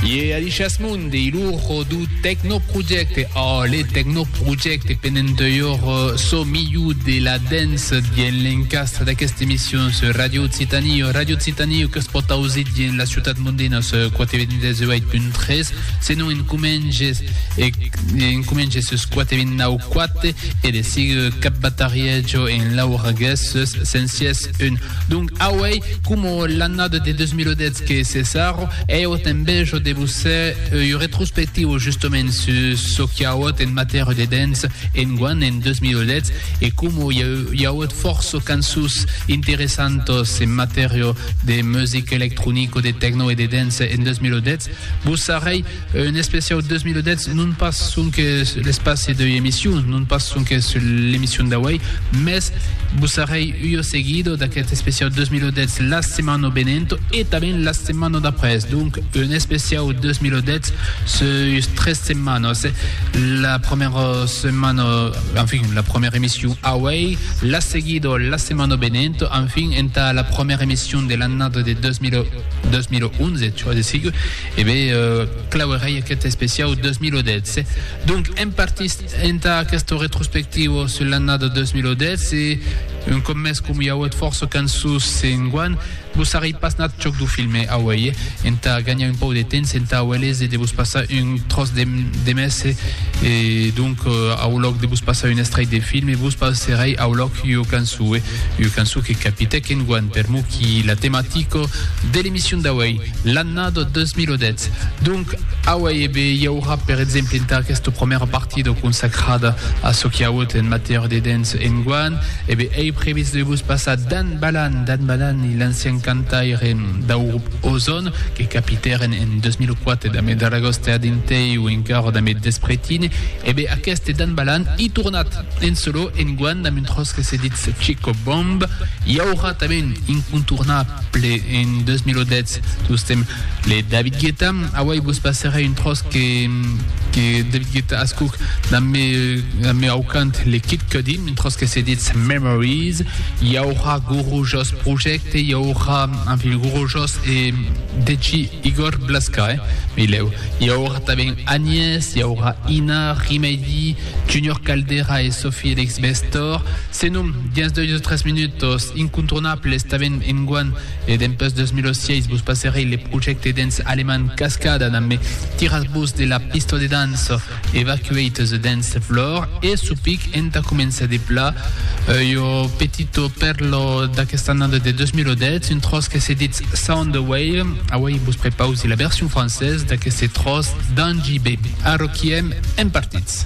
Ie Alicias Mundi, ilurho du Tecnoprojecte. Oh, le Tecnoprojecte penent eur so milhor de la dance dien l'encastre d'aquesta emission sur Radio Occitanie. Radio Occitanie que es pot ausit dien la ciutat mondina sur 428.3, senon en comenges, e, en comenges sur 429.4 e de sigue cap batarietjo en Laura Guesses, sensies un Donc auei coma l'annada de 2010 que cessaro, ei auta enveja de vos ser ua retrospectiva justement sus çò qu'i auot en matèria de dance enguan en 2010 e coma i auot fòrça cançons interessantas en matèria de music electronic o de techno e de dance en 2010, vos sarrei Un especiau 2010, non pas sonque l'espaci deu emission, non pas sonque sul l'emission d'auei, mès vos sarei ua seguida d'aquest especiau 2010 la setmana venent e tanben la setmana d'après. Donc, un especiau 2010 sus tres setmanas. La premiera setmana, enfin, la premiera emission auei, la seguida la setmana venent, enfin, entà la premiera emission de l'annada de 2000, 2011, tu as de sigue, E be, clauerèi aquest especiau 2010. Donc, èm partits entà aquesta retrospectiva sus l'annada 2010 e, un còp mès, coma i auet fòrça cançons enguan, vos sarrei pas nat chòc dau filme auei, entà ganhar un pauc de temps entà auer léser de vos passar un tròç de mes e, donc, au lòc de vos passar un estrèit de filme, vos passerèi au lòc ua cançon, ua cançon que capitèc enguan per mou qui la tematica de l'emission d'auei. L'annada 2010. Donc, aué e be, i aurà per exemple entà aquesta promèra partida consacrada a çò qu'i auut en matèria de dens enguan, e be ei previst de vos passar Dan Balan, Dan Balan i l'ancian cantaire dau grup Ozon, que capitèren en 2004 damb eth Ragòste a Dintei o encara damb eth Despretine, e be aqueste Dan Balan i tornat en solò enguan damb un tròç que se ditz Chico Bomb. I aurà tanben incontornable. Ple en 2010 tostem le David Guetta. Awai vos passerai un tros que, que David Guetta ascuc dans me, dans me aucant le Kid Cudi, un tros que se dit Memories. Hi aurà Guru Jos Project, hi aurà, en fin, Guru Jos e Deji Igor Blaska, eh? Mileu. Hi aurà tanben Agnès, hi aurà Ina, Rimady, Junior Caldera e Sophie Elix Bestor. Senon, dins deus o tres minutos, incontornable estaven enguan e dempus 2006 vos passerei le projècte dens alemand Cascada Nan me tiratz-vos de la pista de dança Evacuate the Dance Floor e sopic entà començar de pla ua petita pèrla d'aquesta annada de 2010 un tròç que se ditz Soundwave auei vos prepausi la version française d'aqueste tròç d'Angie B. Arroquiem en partits.